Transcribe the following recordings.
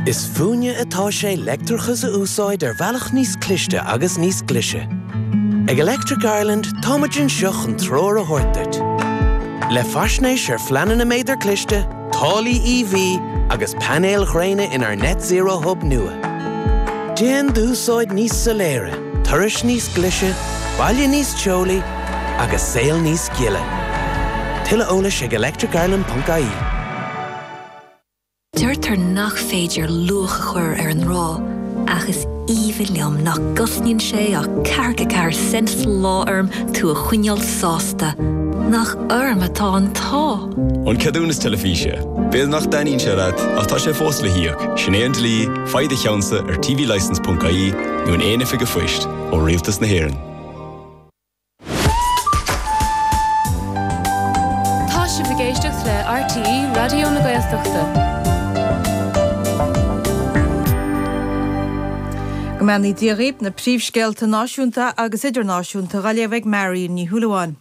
Is fúinne atá sé leictreachas a úsáid ar bhealach níos cliste agus níos glise. Ag Electric Ireland, tá muid anseo chun treoir a thabhairt duit. Le faisnéis ar phleananna méadar cliste, táillí EV agus painéil ghréine inár Net Zero Hub nua. Déan d'úsáid níos soiléire, turais níos glise, baile níos teolaí agus saol níos gile. Tuilleadh eolais ag electricireland.ie. Deirtear nach féidir luach a chur ar an ngrá, ach is aoibhinn liom nach gcosnaíonn sé ach ceathracha ceathair cent sa lá orm tú a choinneáil sásta. Nach orm atá an t-ádh! An ceadúnas teilifíse. B'fhéidir nach dtaitníonn sé leat, ach tá sé fós le híoc, sin é an dlí, faigh do cheannsa ar tvlicense.ie nó in aon oifig an phoist ó Rialtas na hÉireann. Tá sibh ag éisteacht le RTÉ Raidió na Gaeltachta. Go mbeannaí Dia dhaoibh, na príomhscéalta náisiúnta agus idirnáisiúnta dhá léamh ag Marion Ní Shúilleabháin.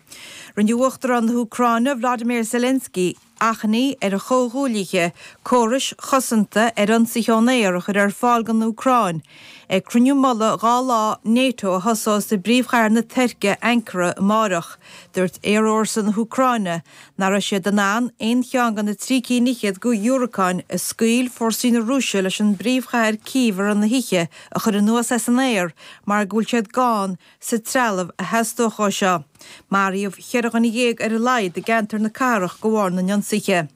Rinne Uachtarán na hÚcráine, Volodymyr Zelensky, achainí ar a chomhghuaillithe córais chosanta ar ionsaithe ón aer a chur ar fáil don Úcráin ag cruinniú mullaigh dhá lá Nato a thosós i bpríomhchathair na Tuirce, Ankara, amárach. Dúirt aerfhórsa na hÚcráine nach raibh siad in ann aon cheann de na trí cinn fhichead de dhiúracáin a scaoil fórsaí na Rúise leis an bpríomhchathair Cív ar an oíche a chur anuas as an aer mar go bhfuil siad gann sa trealamh a theastódh dó seo. Maraíodh cheithre dhuine dhéag ar a laghad i gceantar na cathrach de bharr na n-ionsaithe.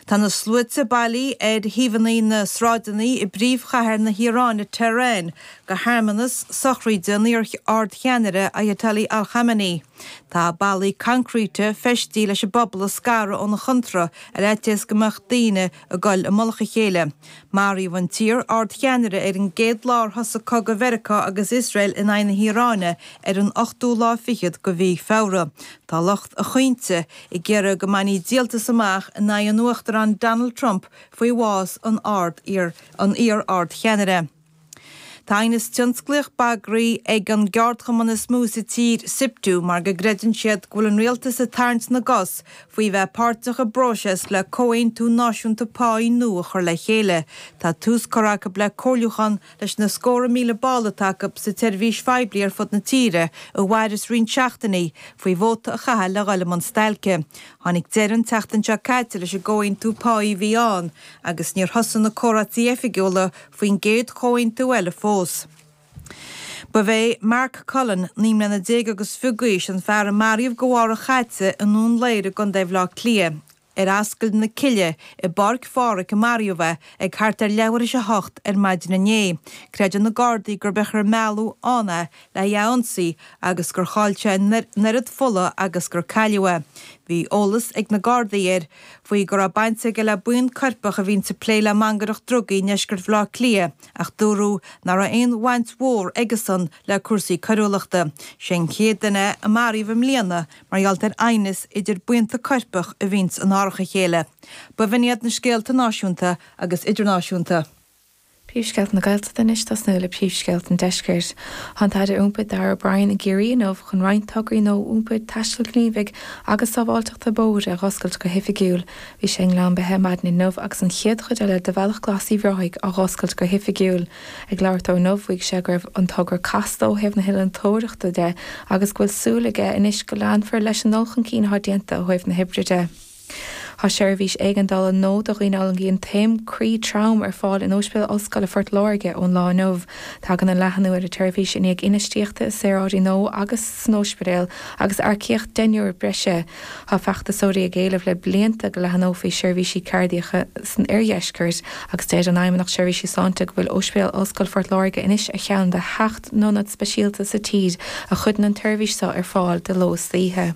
Tá na sluaite bailí ar thaobhanna na sráideanna i bpríomhchathair na hIaráine, Tehran, go hearmannas sochraíde an iar-ardcheannaire Ayatollah al-Khamenei. Tá ballaí concrete feistí leis an bpobal a scaradh óna chónra ar fhaitíos go mbeadh daoine ag dul i mullach a chéile. Maraíodh an t-iar-ardcheannaire ar an gcéad lá ar thosaigh cogadh Mheiriceá agus Iosrael in aghaidh na hIaráine ar an ochtú lá fichead de Mhí Feabhra. Tá lucht a chaointe ag iarraidh go mbainfí díoltas amach in aghaidh an Uachtaráin Donald Trump faoi bhás an iar-ardcheannaire. Tá aighneas tionsclaíoch bagraí ag an gceardchumann is mó sa tír, Siptu, mar go gcreideann siad go bhfuil an rialtas ag tarraingt na gcos faoi bheith páirteach i bpróiseas le comhaontú náisiúnta páí nua a chur le chéile. Tá tús curtha acu le comhairliúchán leis na scóra míle ball atá acu sa tseirbhís phoiblí ar fud na tíre i bhfoisceacht roinnt seachtainí faoi vóta a chaitheamh le dhul i mbun stailce. Tháinig deireadh an tseachtain seo caite leis an gcomhaontú páí a bhí ann agus níor thosaigh na comhráití oifigiúla faoin gcéad chomhaontú eile fós. Ba é Mark Cullen, naoi mbliana déag agus fiche d'aois, an fear a maraíodh de bharr a chaite i nDún Laoghaire i gContae Bhleá Cliath, ar Ascaill na Cille i bPáirc Phádraig a maraíodh é, ag thart ar leathuair tar éis a hocht ar maidin inné. Creideann na Gardaí gurb é an chaoi ar mealladh ann é le hé a ionsaí agus gur chaill sé an oiread fola agus gur cailleadh é. Bhí eolas ag na Gardaí air faoi go raibh baint aige le buíon coirpeach a bhíonn ag plé le mangaireacht drugaí i ndeisceart Bhaile Átha Cliath ach dúradh nach raibh aon bhaint mhór aige-san le cúrsaí coiriúlachta. Is é an chéad duine a maraíodh i mbliana mar gheall ar aighneas idir buíonta coirpeach a bhíonns in árach a chéile. B'in iad na scéalta náisiúnta agus idirnáisiúnta. Príomhscéalta na Gaeltachta anois, ag tosnú le príomhscéalta an Deiscirt. Tá an tAire Iompair Darragh O'Brien i gCiarraí inniu chun roinnt tograí nua iompair, taistil ghníomhaigh agus sábháilteachta bóthair a dh'oscailt go hoifigiúil. Bhí sé i nGleann Beithe maidin inniu agus an chéad chuid eile de Bhealach Glas Uíbh Ráthaigh á dh'oscailt go hoifigiúil. Ag labhairt dó inniu mhaígh sé go raibh an togra casta ó thaobh na hinnealtóireachta de agus go bhfuil súil aige anois go leanfar leis an ndul chun cinn atá déanta ó thaobh na hoibre de. Tá seirbhís éigeandála nua do dhaoine a fhulaingíonn taom croí trom ar fáil in Óispidéal Ollscoile Phort Láirge ón lá inniu. Tagann an leathanú ar an tseirbhís i ndiaidh infheistíochta i saoráidí nua agus san óispidéal agus earcaíocht deichniúr breise. Tá feachtasóirí ag éileamh le blianta go leathanófaí seirbhísí cairdiacha san oirdheisceart agus deir an Fheidhmeannacht Seirbhísí Sláinte go bhfuil Óispidéal Ollscoile Phort Láirge anois ar cheann de sheacht n-ionad speisialta sa tír a chuireann an tseirbhís seo ar fáil de ló is d'oíche.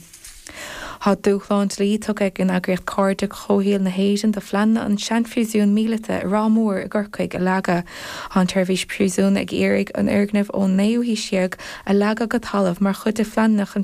Tá dúshlán dlí tugtha ag an eagraíocht Cairde Comhshaoil na hÉireann do phleananna an seanphríosún míleata i Ráth Mór i gCorcaigh a leagadh. Tá an tSeirbhís Príosún ag iarraidh an fhoirgneamh ón naoú haois déag a leagadh go talamh mar chuid de phleananna chun